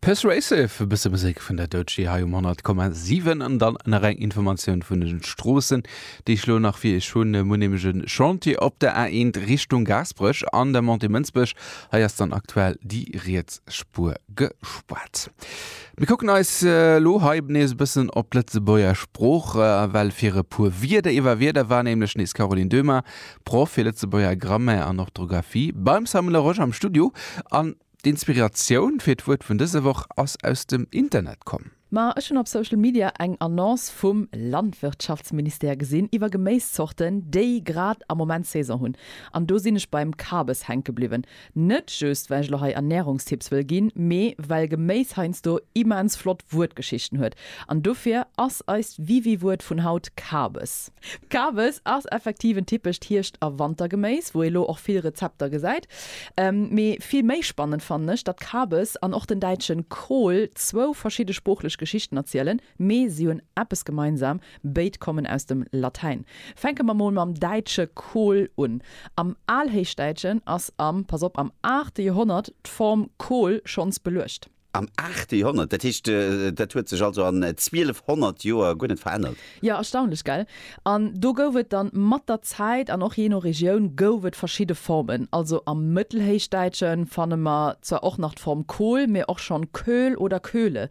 Persuasive, e bësse Musek vun der Doechii hei um 100,7 an dann nach eng Informatioun vun den Stroossen, déi ech elo nach fir Iech hunn. Mir hunn nämlech e Chantier op der A1 Richtung Gaasperech an der Montée Mënsbech. Hei ass dann aktuell déi riets Spuer gespaart. Mir kucken eis elo hei nees e bëssen op d'Lëtzebuerger Sprooch, well fir e puer Wierder iwwer Wierder war nämlech nees d'Caroline Döhmer Proff fir Lëtzebuerger Grammaire an Orthografie beim Samuel Laroche am Studio an d'Inspiratioun fir d'Wuert vun dëser Woch ass aus dem Internet komm. Ma ech hunn op Social Media eng Annonce vum Landwirtschaftsministère gesinn iwwer Geméiszorten, déi grad am Moment Saison hunn. An do sinn ech beim Kabes hänke bliwwen. Net just well ech lo hei Ernährungstipps wëll ginn, mee well Geméis heiansdo immens flott Wuertgeschichten huet. An dofir ass eist Wiwi-Wuert vun haut Kabes. Kabes ass effektiv en typescht Hierscht a Wantergeméis, wou ee lo och vill Rezepter gesäit. Mee vill méi spannend fannen ech, datt Kabes an och den däitschen Kohl zwou verschidde sproochlech Geschichten erzielen. Mee si hunn eppes gemeinsam, béid kommen aus dem Latäin. Fänke mer mol mam däitsche Kohl un. Am Alhéichdäitschen ass am, pass op, am aachte Joerhonnert d'Form Kohl schonns beluecht. Am aachte Joerhonnert? Dat heescht, dat huet sech also an 1200 Joer guer net verännert? Jo, erstaunlech, gell? An do gouf et dann mat der Zäit, an och jee no Regioun, gouf et verschidde Formen. Also am Mëttelhéichdäitsche fanne mer zwar och nach d'Form Kohl, mee och schonn Köhl oder Köhle.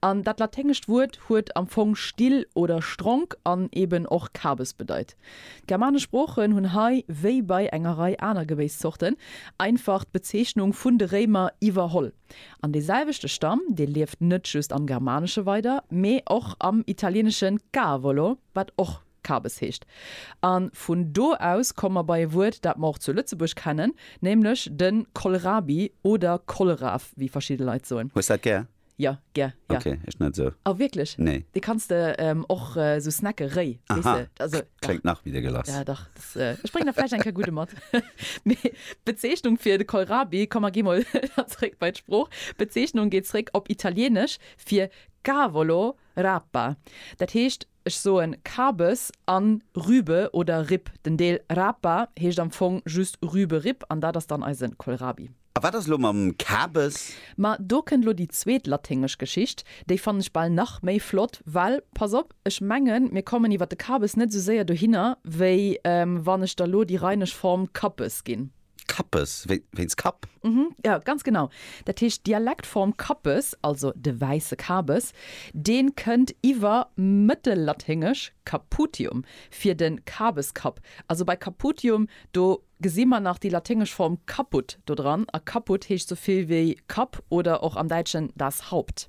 An dat laténgescht Wuert huet am Fong still oder stronk an eben och Kabes bedeit. D'germanesch Sproochen hunn hei, wéi bei enger Rei aner Gebéisszorten, einfach d'Bezeechnung vun de Réimer iwwerholl. An dee selwechte Stamm, dee lieft net just am Germanesche weider, mee och am Italienesche cavolo, wat och Kabes heescht. A vun do aus komme mer bei e Wuert, dat mer och zu Lëtzebuerg kennen, nämlech de Kohlrabi oder Kohlraaf, wéi verschidde Leit soen. Hues dat gär? Jo, gär, jo. Ok, ech net esou. Oh, wierklech? Nee. Dee kanns de och esou snacken, réi, weess de. Aha, kléngt nach méi dégueulasse. Ja, dach. Ech bréngen der vläicht eng Kéier gudde mat. Mee d'Bezeechnung fir de Kohlrabi, komm mer gi mol dann zréck bei d'Sprooch, d'Bezeechnung geet zréck op Italieenesch fir Cavolo, Rapa. Dat heescht. Ech soen Kabes an Rübe oder Ripp. Den Deel Rapa heescht am Fong just Rüberipp an dat ass dann eisen Kohlrabi. A wat ass elo mam Kabes? Ma do kënnt elo déi zweet laténgesch Geschicht. Déi fannen ech bal nach méi flott, well pass op, ech mengen mir kommen iwwer de Kabes net esou séier dohinner wéi wann ech der elo déi rheinesch Form Kappes ginn. Kappes, wéinst Kapp? Mhm, jo, ganz genau. Dat heescht, d'Dialektform Kappes, also de wäisse Kabes, dee kënnt iwwer Mëttellaténgesch caputium fir de Kabeskapp. Also bei caputium, do gesi mer nach déi laténgesch Form caput do dran, a caput heescht esou vill wéi Kapp oder och am Däitschen das Haupt.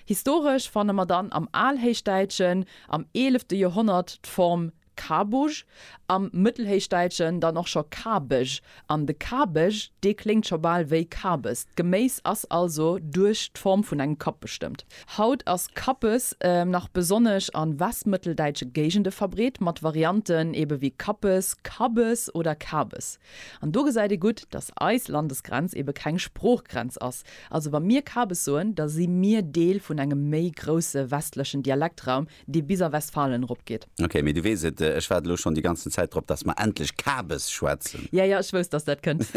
Historesch fanne mer dann am Alhéichdäitschen am eelefte Joerhonnert d'Form Kabug, am Mëttelhéichdäitschen dann och scho Kabeg, an de Kabeg, dee kléngt scho bal wéi Kabes. D'Geméis ass also duerch d'Form vun engem Kapp bestëmmt. Haut ass Kappes nach besonnesch a westmëtteldäitsche Géigende verbreet, mat Varianten ebe wéi Kappes, Kabbes oder Kabes. An do gesäit ee gutt, datt eis Landesgrenz ebe keng Sproochgrenz ass. Also wa mir Kabes soen, da si mir Deel vun engem méi grousse westlechen Dialektraum, dee bis a Westfalen eropgeet. Ok, mee du weess et, ech waart elo schonn déi ganzen Zäit drop, dass mer endlech Kabes schwätzen. Ja, ja, ech wousst, dass dat kënnt.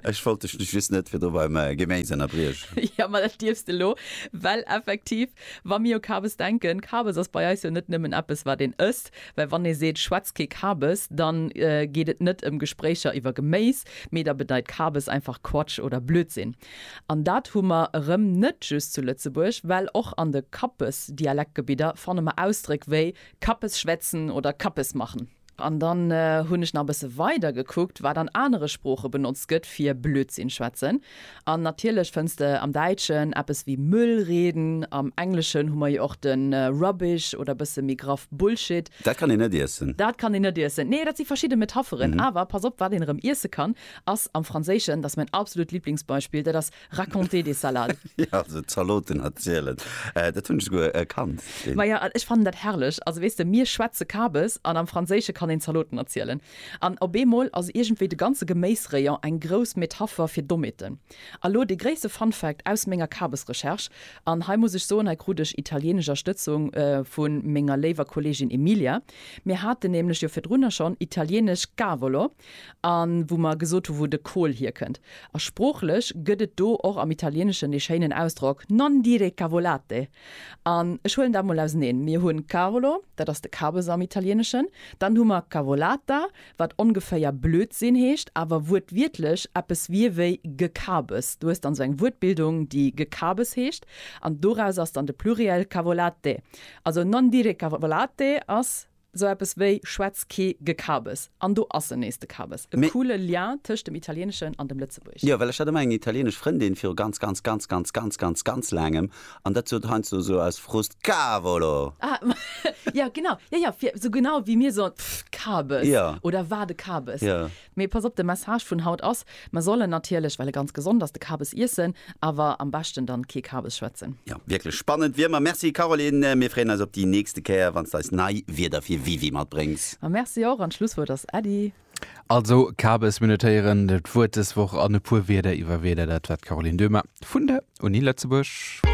Ech wollt dech just net virdru beim Geméis ënnerbriechen. Jo, ma dat dierfs de elo, well effektiv, wa mir u Kabes denken, Kabes ass bei eis jo net nëmmen eppes, wat een ësst, well wann ee seet, schwätz kee Kabes, da geet et net ëm Gespréicher iwwer Geméis, mee da bedeit Kabes einfach Quatsch oder Blödsinn. An dat hu mer erëm net just zu Lëtzebuerg, well och an de Kappes-Dialektgebidder fanne mer Ausdréck wéi Kappes schwätzen oder Kappes machen. An dann hunn ech nach e bësse weider gekuckt, wat an anere Sprooche benotzt gëtt fir Blödsinn schwätzen. An natierlech fënns de am Däitschen eppes wéi Müll reden. Am Engleschen hu mer jo och de Rubbish oder bësse méi graff Bullshit. Dat kann een net iessen. Dat kann een net iessen. Nee, dat si verschidde Metapheren. Awer pass op, wat een erëm iesse kann, Ass am Franséischen, dat ass mäin absolut Liblingsbeispill, dat ass raconter des salades. Jo, also Zaloten erzielen, dat hunn ech souguer kannt. Maja, an ech fannen dat herrlech. Also weess de, mir schwätze Kabes an am Franséische kann een Zaloten erzielen. An op eemol ass iergendwéi de ganze Geméisrayon eng grouss Metapher fir Dommheeten. A lo dee gréisste Fun Fact aus menger Kabesrecherche, an hei muss ech soen, hei krut ech italienesch Erstëtzung vu menger léiwer Kolleegin Emilia, Mir haten nämlech jo virdrunner schonn italienesch cavolo. a wou mer gesot hu wou de Kohl hierkënnt. A sproochlech gëtt et do och am Italieeneschen dee schéinen Ausdrock non dire cavolate. An ech huelen dat mol auseneen, Mir hunn cavolo, dat ass de Kabes am Italieeneschen, dann hu mer cavolata, wat ongeféier Blödsinn heescht, awer wuertwiertlech eppes wier wéi Gekabes. Du hues dann esou eng Wuertbildung, déi Gekabes heescht, an doraus ass dann de Pluriel cavolate. Also non dire cavolate ass Sou eppes wéi Schwätz ké Gekabes an do ass en nees de Kabes. E coole Lien tëscht dem Italieneschen an dem Lëtzebuerg. Jo, well ech hat emmer eng italienesch Frëndin viru ganz, ganz, ganz, ganz, ganz, ganz, ganz laangem an dat sot heiansdo esou aus Frust Cavolo! Ah, jo genau, jo jo, fir esou genau wéi mir soen, pff, Kabes! Oder war de Kabes! Mee pass op, de Message vun haut ass, mer sollen natierlech, well e ganz gesond ass, de Kabes iessen, awer am beschten dann kee Kabes schwätzen. Jo, wierklech spannend wéi ëmmer. Merci Caroline, mir freeën eis op déi nächste Kéier wann s d'eis nei Wierder fir WiWi matbréngs. Ma merci och, an d'Schlusswuert ass Äddi. Also Kabes, mir notéieren d'Wuert dës Woch an e puer Wierder iwwer Wierder, dat war d'Caroline Döhmer vun der Uni Lëtzebuerg.